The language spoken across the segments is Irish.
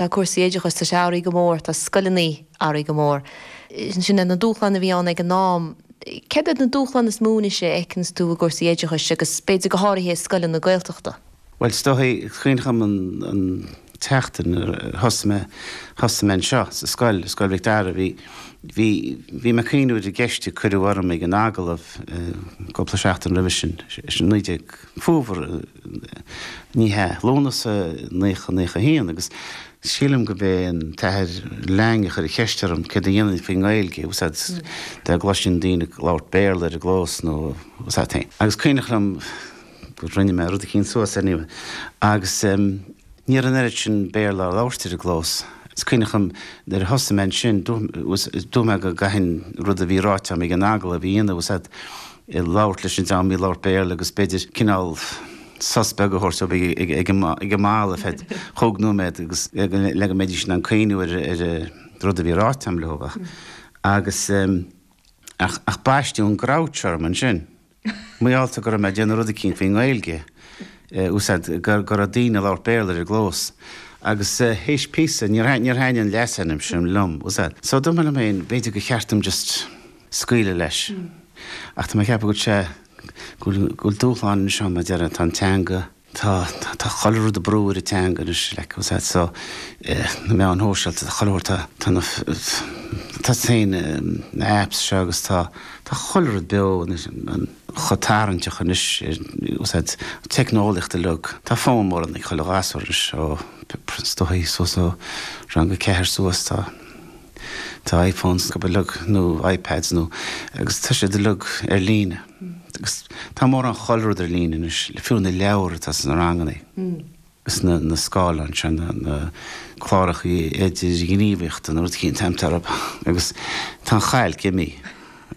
Tá cúrsaí oideachais, tá sé athraithe go mór, tá scoileannaí athraithe go mór. Sin iad na dúshláin a bhí ann ag an am. Céard iad na dúshláin is mó anois a fheiceanns tú i gcúrsaí oideachais agus b'fhéidir go háraithe i scoileanna Gaeltachta? Bhuel, is dóigh, cuimhneach liom an tseachtain nuair a thosaigh mé, thosaigh mé anseo sa scoil, i Scoil Mhic Dara, bhí, bhí, bhí mé ag cuimhniú ar an gceist a cuireadh orm ag an agallamh cúpla seachtain roimhe sin, sin naoi déag, Fómhar, Ní hea. Lúnasa 1991 agus sílim gurb é an tAthair Lang a chuir an cheist orm céard a dhéanfainn faoin nGaeilge a úsáid dá gcloisfinn daoine ag labhairt Béarla ar an gclós tá's a'd féin. Agus cuimhneach liom gur rinne mé rud eicínt suas air, ní agus ní raibh an oiread sin Béarla á labhairt ar an gclós. Is cuimhneach liom nuair a thosaigh mé ansin, dúirt mé go gcaithfinn rud a bhí ráite agam ag an agallamh a dhéanamh tá's a'd, ag labhairt leis an dream a labhair Béarla agus b'fhéidir cineál sos beag a thabhairt dóibh ag an mballa ar feadh chúig nóiméad agus le go mbeidís in ann cuimhniú ar rud a bhí ráite agam leo ach agus ach baisteadh an grouch orm ansin, mar gheall go raibh mé ag déanamh rud eicínt faoin nGaeilge, úsáid go raibh daoine ag labhairt Béarla ar an gclós agus théis píosa níor thaitnigh an leasainm sin liom, tá's a'd so dúirt mé liom féin b'fhéidir gur cheart dom just. scaoileadh leis. Ach tá mé ag ceapadh go bhfuil sé, go bhfuil, go bhfuil dúshláin anois ann mar a deir, tá an teanga, tá, tá chuile rud ag brú ar an teanga anois, like, tá's a'd, so, eh, na meáin shóisialta, tá chuile, tá, tá na, tá is féin, na apps seo agus tá, tá chuile rud beo anois, an, chomh tarraingteach anois ar, tá's a'd, teicneolaíocht uilig. Tá fonn mór anois ag chuile ghasúr anois ó, is dóigh, suas ó rang a ceathair suas, tá. Tá iPhones acub uilig, nó iPads, nó, agus tá siad uilig ar líne. Agus tá mórán chuile rud ar líne anois, fiú na leabhair atá sna ranganna, agus na na scáileáin seo, na na clárachaí idirghníomhaíochta, na rud eicínt, táim tar ab, agus tá an chailc imí.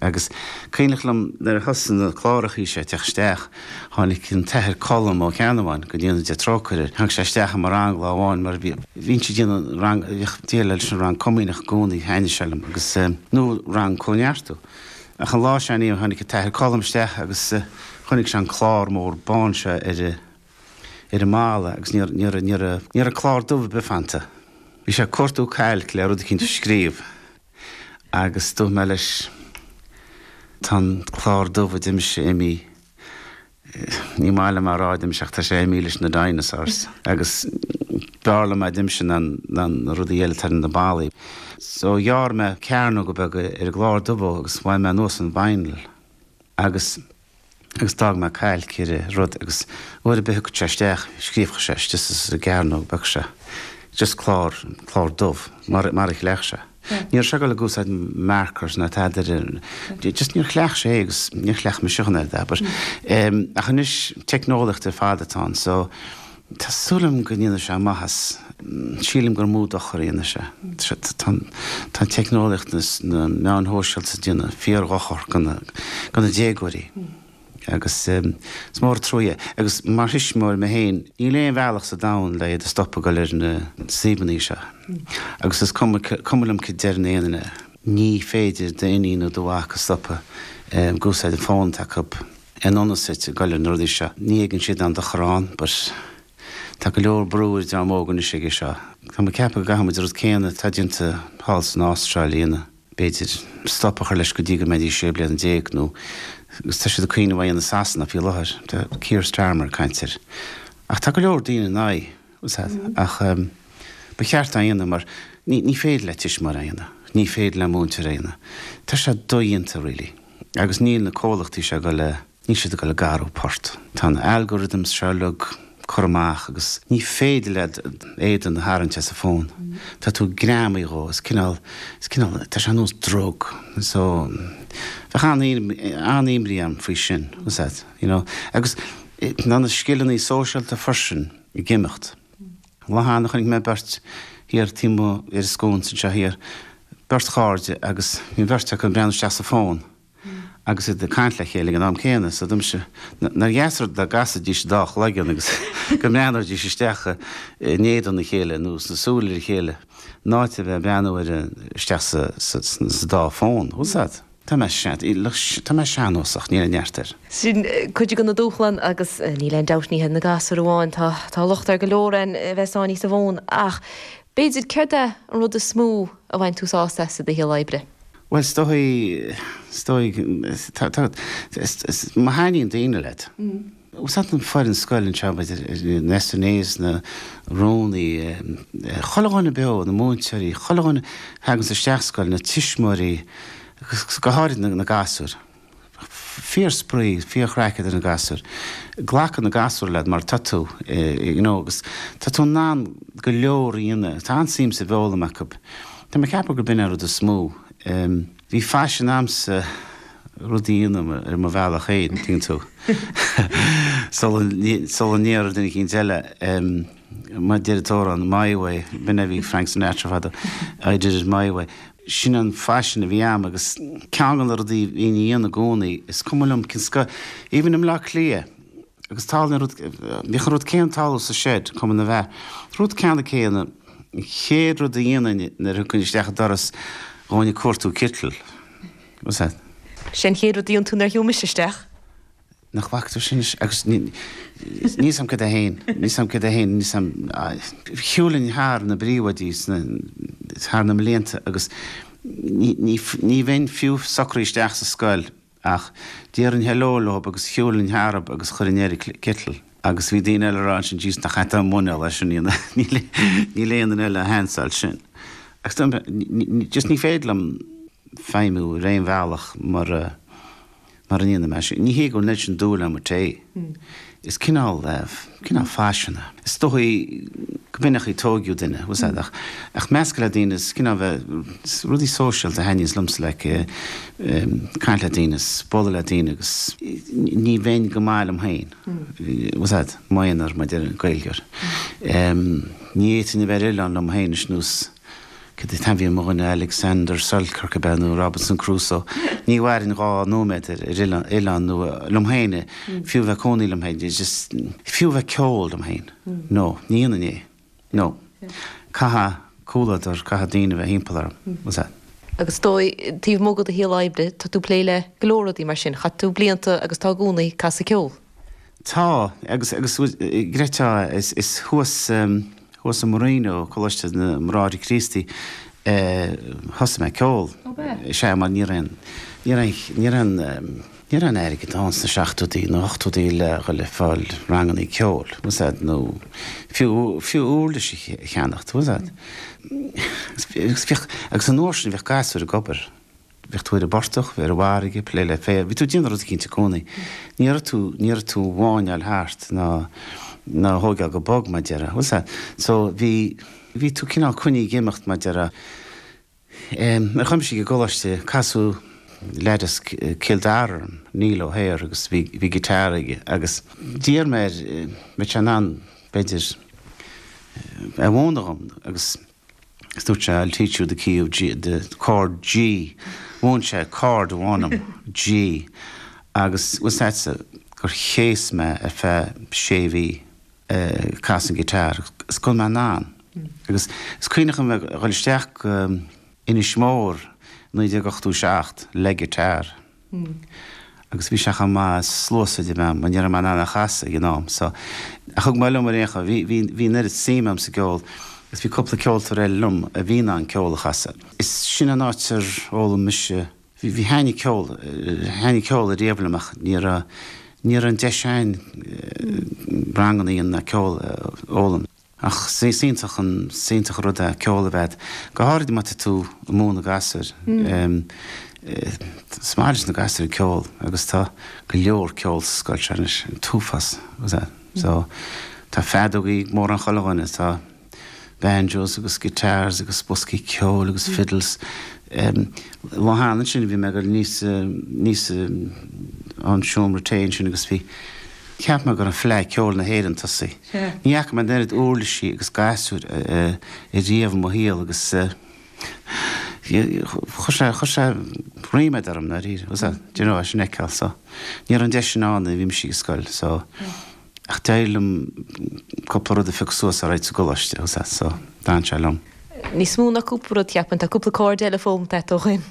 Agus cuimhneach liom nuair a thosaigh na clárachaí seo ag teacht isteach, tháinig an tAthair Colm Ó Ceannabháin go ndéana Dia trócaire air, tháinig sé isteach i mo rang lá amháin mar bhí, bhínnse ag déanamh rang, bhíodh déileáil leis an rang comaoineach i gcónaí, thaitnigh sé liom agus, nó rang Comhneartú. Ach an lá seo Aoine tháinig an tAthair Colm isteach agus chonaic sé an clár mór bán seo ar, ar an mballa agus níor, níor, níor, níor fhan clár dubh ar bith fanta. Bhí sé ag cuartú cailc le rud eicínt a scríobh. Agus dúirt mé leis, Tá an clár dubh a deirimse imí, níor mhaith liom a rá a deirimse ach tá sé imí leis na dinosaurs agus b'fhearr liom a deirimse ná na rudaí eile atá ar na ballaí. So ghearr mé cearnóga beaga ar an gclár dubh agus bhain mé anuas an vinyl agus agus d'fhág mé cailc ar a rud agus uair ar bith a thiocfadh sé isteach scríobfadh sé isteach sa gcearnóg bheag seo just clár, clár dubh mar a chleacht sé. Ní raibh sé ag dul ag úsáid markers ná tada ar bith, just níor chleacht sé é agus níor chleacht mise chun é a abair. Ach anois teicneolaíocht ar fad atá ann so, Tá súil agam go ndéanfaidh sé maitheas. Sílim gur mó dochar a dhéanfaidh sé. Tá an teicneolaíocht is na meáin shóisialta ag déanamh fíordhochar do na déagóirí agus is mór an trua é. Agus mar thuismitheoir mé féin, níl aon bhealach sa domhan le iad a stopadh ag dul ar na suíomhanna seo. Agus is cuma liom céard a deireann aon duine, ní féidir d'iníon nó do mhac a stopadh ag úsáid an fón atá acu. An iomad suite ag goil ar na rudaí seo, ní thuigeann siad an dochar ann, but tá go leor brú ar dream óg anois aige seo. Tá mé ag ceapadh go gcaithfimid an rud céanna atá déanta thall san Astráil a dhéanamh, b'fhéidir, stop a chur leis go dtí go mbeidh siad sé bliana déag nó, agus tá siad ag cuimhneamh é a dhéanamh i Sasana faoi láthair, tá Keir Starmer ag caint air. Ach tá go leor daoine in aghaidh. úsáid. Ach ba cheart é a dhéanamh mar ní féidir le tuismitheoir é a dhéanamh, ní féidir le múinteoir é a dhéanamh. Tá sé dodhéanta really. Agus níl na comhlachtaí seo ag dul a, níl siad ag dul ag athrú port. Tá na algorithms seo uilig curtha amach agus ní féidir leat d'éadan a tharraingt as an bhfón. Tá tú greamaithe dhó, is cineál, is cineál, tá sé ar nós drug. So, bheadh an-imní orm faoi sin, úsáid, you know. Agus na scileanna sóisialta freisin. ag imeacht. An lá cheana chonaic mé beirt thiar taobh amuigh ar an sconsa anseo thiar, beirt chairde agus bhí an bheirt acu ag breathnú isteach sa fón agus iad ag caint le chéile ag an am céanna. So domsa, nár dheas rud dá gcasfaidís dá chloigeann agus go mbreathnóidís isteach in éadan a chéile nó sna súile ar a chéile in áit a bheith ag breathnú isteach sa dá fón. Tá mé sean, tá mé seannósach, níl aon neart air. Sin cuid de na dúshláin agus níl aon dabht, ní hiad na gasúir amháin, tá, tá locht ar go leor ann a bheith sáinnithe sa bhfón ach b'fhéidir céard é an rud is mó a bhain tú sásamh as i do shaol oibre? Bhuel is dóigh, is dóigh, tá, tá, is, is, má thaitníonn daoine leat, Ó thaitin an fhoireann scoile, an t-am,, na SNAs, na rúnaithe, chuile dhuine beo, na múinteoirí, chuile dhuine a thagann isteach sa scoil, na tuismitheoirí agus go háirid na gasúir. Fíor spraoi, fíor chraic idir na gasúir. Glacann na gasúir leat mar tá tú you know agus tá tú in ann go leor a dhéanamh. Tá an-suim sa bhfoghlaim acu. Tá mé ag ceapadh gurb in é an rud is mó. Bhí faisean agamsa rudaí a dhéanamh ar mo bhealach féin, an dtuigeann tú, sula ndéarfadh duine éicint eile, mar a deir an t-amhrán, my way, b'in é a bhí ag Frank Sinatra fadó, I did it my way. Sin an faisean a bhí a'm agus ceann de na rudaí a bhínn a dhéanamh i gcónaí, is cuma liom cén scoil, even i mBleá Cliath, Agus thall na rud, bhíodh an rud céanna thall sa States, cuma na bheath, an rud ceannann céanna, an chéad rud a dhéanainn nuair a thiocfainn isteach an doras, ghabhainn ag cuartú citeal. Bhfuil a fhios a'd? Sé an chéad rud a dhéanann tú nuair a thiocfaidh mise isteach. Nach bhfactar sin anois? Agus níl a fhios a'm cad é fhéin, níl a fhios a'm cad é fhéin, níl a fhios a'm, shiúilinn thar na bpríomhoidí sna, thar na mblianta agus ní, ní, ní bheinn fiú socraithe isteach sa scoil Ach déarfainn heileo leob agus shiúilfinn tharab agus chuirfinn air an citeal agus bhí daoine eile ag rá ansin Jees nach air atá an muineál é sin, níl aon duine eile a sheansáil sin. Agus dom just ní féidir liom feidhmiú ar aon bhealach mara ndéanaim é sin. Ní hé go bhfuil an oiread sin dúil agam i tae. Is cineál, cineál faisean é. Is dóigh go b'in é an chaoi a tóigeadh duine, bhfuil a fhios a'd, ach, ach meascadh le daoine is cineál bheith, is rudaí sóisialta a thaitníos liomsa like, caint le daoine is bualadh le daoine agus ní bheinn go maith liom féin, bhfuil a fhios a'd, i m'aonar, mar a deir an Gaeilgeoir. Ní fhéadfainn a bheith ar oileán liom féin, is nós. Cén t-ainm a bhí ar mo dhuine Alexander Selkirk ab ea, nó Robinson Crusoe? Ní mhairfinn dhá nóiméad ar oileán nó liom féin, fiú bheith cónaí liom féin, just, fiú bheith ceol liom féin. No, ní dhéanfainn é. No. Caithfidh comhluadar, caithfidh daoine bheith thimpeall orm. Bhfuil a fhios a'd? Agus ar ndóigh, taobh amuigh de do shaol oibre, tá tú plé le go leor rudaí mar sin. Chaith tú blianta, agus tá i gcónaí, casadh ceoil. Tá, agus agus tá, is thuas, thuas i Marino, Coláiste na mBráithre Críostaí, a thosaigh mé ceol. Ó b'ea? Is ea, mar ní raibh an, ní raibh an, ní raibh an, ní raibh aon airgead ann sna seachtóidí, na hochtóidí le dhul ag fáil rangannaí ceoil, bhfuil a fhios a'd, nó fiú, fiú uirlis a cheannacht, bhfuil a fhios a'd. Agus bhíodh, agus an uair sin bhíodh gasúir ag obair. bheadh tú ar an bportach, ar an bhfarraige, ag plé le féar, bhí tú ag déanamh rud eicínt i gcónaí. Ní raibh tú, ní raibh tú ag máinneáil thart ná, ná á thóigeáil go bog, mar a deireadh. Bhfuil a fhios a'd? So, bhí, bhí tú cineál coinnithe ag imeacht, mar a deireadh. Em, nuair a chuaigh mise ag an gcoláiste, casadh leaid as Cill Dara orm, Neil O'Hare agus bhí, bhí guitar aige agus d'iarr mé air, mbeadh sé in ann, b'fhéidir, eh, a mhúineadh dhom agus, Is dúirt sé, I'll teach you the key of G, the chord G. Mhúin sé chord amháin dom, G, agus bhfuil a fhios agatsa gur chéas mé ar feadh sé mhí ag casadh an ghiotár agus gan mé in ann. Agus is cuimhneach liom bheith ag dul isteach go Inis Mór i 1987 le giotár. agus bhí sé chomh maith sluasaid a bheith agam, ní raibh mé in ann é a chasadh ag an am so ach thug mé liom ar aon chaoi. Bhí, bhí, bhí an oiread suim agam sa gceol agus bhí cúpla ceoltóir eile liom a bhí in ann ceol a chasadh. Is sin an áit ar fhoghlaim mise, bhí, bhí, thaitnigh ceol, thaitnigh ceol riamh liom ach ní raibh, ní raibh an deis a'inn ranganna a dhéanamh ná ceol a fhoghlaim. Ach is iontach an, is iontach an rud é ceol a bheith agat, go háirid má tá tú ag múineadh gasúir. Is maith leis na gasúir an ceol agus tá go leor ceol sa scoil seo anois, an t-uafás. So tá feadógaí ag mórán chuile dhuine, tá banjos agus guitars agus boscaí ceoil agus fiddles. Lá cheana ansin bhí mé ag dul aníos an seomra tae ansin agus bhí, Cheap mé go raibh Fleadh Cheoil na hÉireann tosaithe. Ní fhaca mé an oiread uirlisí agus gasúir riamh i mo shaol agus chuir sé ríméad orm, ndáiríre. Sea, do you know, é sin a fheiceáil so. Ní raibh an deis sin ann nuair a bhí mise ag scoil so ach d'éirigh liom cúpla rud a phiocadh suas alright sa gcoláiste, sea. So, d'fhan sé liom. Níos mó ná cúpla rud, cheapfainn. Tá cúpla corda eile foghlamtha agat ó shin.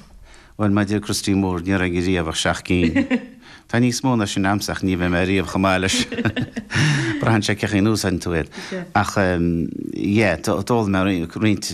Bhuel, mar a deir Christy Moore, ní raibh aige riamh ach seacht gcinn. Tá níos mó ná sin agamsa ach ní bheidh mé riamh chomh maith leis. Braitheann sé cén chaoi a úsáideann tú iad. Ach, yeah, d'fhoghlaim mé roinnt